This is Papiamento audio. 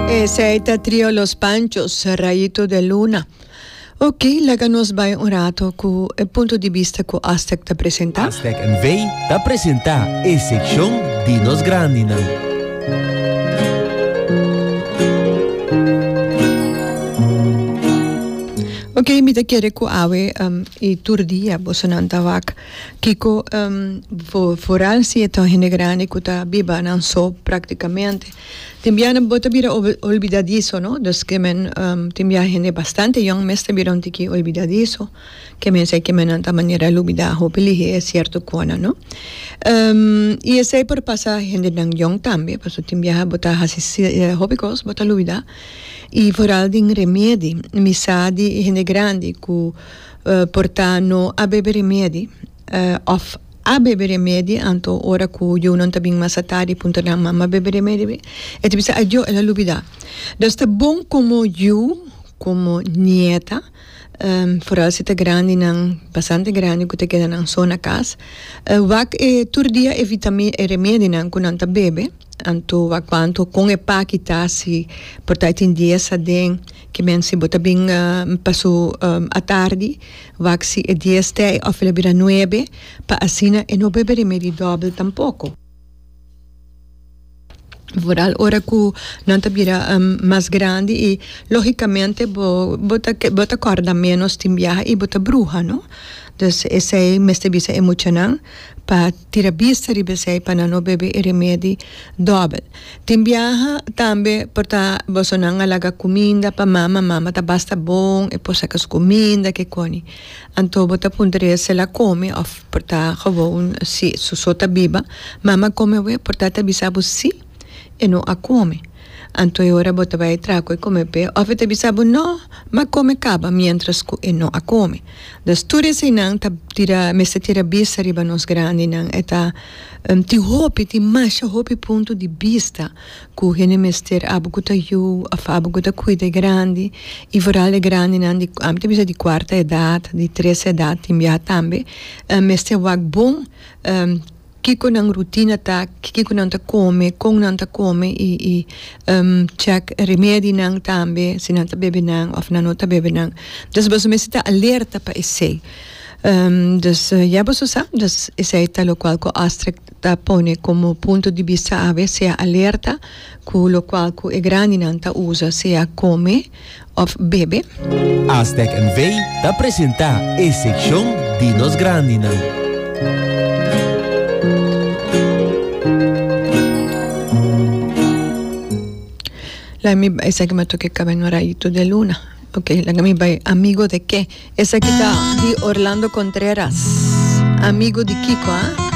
Esey ta trio Los Panchos, Rayito de Luna. Ok, laga nos bay un rato cu e punto di bista cu Aztec ta presenta. Aztec NV ta presenta e seccion di nos grandinan. Ok, mi ta kere cu awe um, y tur dia bosonan ta wak. Kiko, um, vo, vooral si e ta hende grande cu ta biba nan so prácticamente. Tin bia nan bo ta bira olbidadiso no dos kemen tin bia hende bastante yong mes ta bira un tiki olbidadiso kemen esei kemennan ta manera lubida hopi lihé e sierto konan no i esei por pasa hendenan yong tambe pasobra tin bia bo ta hasi hopi kos bo ta lubida i foral di remiedi mi sa di hende grandi ku por ta no a bebe remiedi. Òf a bebe remedi, anto ora ku yunan ta bin mas atadi i puntra nan, Mama bebe remedi be? E ta bisa, Adio, el a lubidá. Dus ta bon komo yu, komo nieta, foral si ta grandinan, bastante grandi ku ta keda nan so na kas, wak e tur dia e vitami e remedinan ku nan ta bebe, anto wak kuantu kon e paki ta si por ta tin dies aden, kimen si bo ta bin pasu atardi Wak si e dies t'ei of el a bira nuebe, pa asina e no bebe remedi dòbel tampoko. Vooral ora ku nan ta bira mas grandi i lógikamente bo bo ta bo ta kòrda ménos tin biaha i bo ta bruha, no? Dus esei mester bisa e muchanan pa. Tira bista riba esei pa nan no bebe e remedi dobel. Tin biaha tambe por ta bosonan a laga cuminda pa mama, mama ta basta bon, e por saca su cuminda kikoni. Anto bo ta puntra riba sil a come of por ta gewoon si su so ta biba. Mama come awe por tata bisa bo si. E no a kome. Anto e ora bo ta bai traha ku e kome p'e òf e ta bisa bo, No, m'a kome kaba, miéntras ku e no a kome. Dus tur eseinan ta tira mester tira bista riba nos grandinan. E ta tin hopi, tin masha hopi punto di bista ku hende mester abo ku ta yu òf abo ku ta kuida e grandi i foral e grandinan di ami ta bisa di kuarta edat, di tres edat, tin biaha tambe mester wak bon. Kiko nan rutina ta, kiko nan ta kome, kon nan ta kome i i chèk remedinan tambe si nan ta bebe nan òf nan no ta bebe nan. Dus boso mester ta alerta pa esei. Dus ya boso sa, dus esei ta lokual ku Astrek ta pone komo punto di bista awe, sea alerta ku lokual ku e grandinan ta usa, sea kome, of bebe. Aztec NV ta presenta e seccion di nos grandinan. Laga mi bai, esaki ma toke caba en un rayito de luna. Ok, laga mi bai, amigo de qué? Esaki ta di Orlando Contreras. Amigo di Kiko, ah?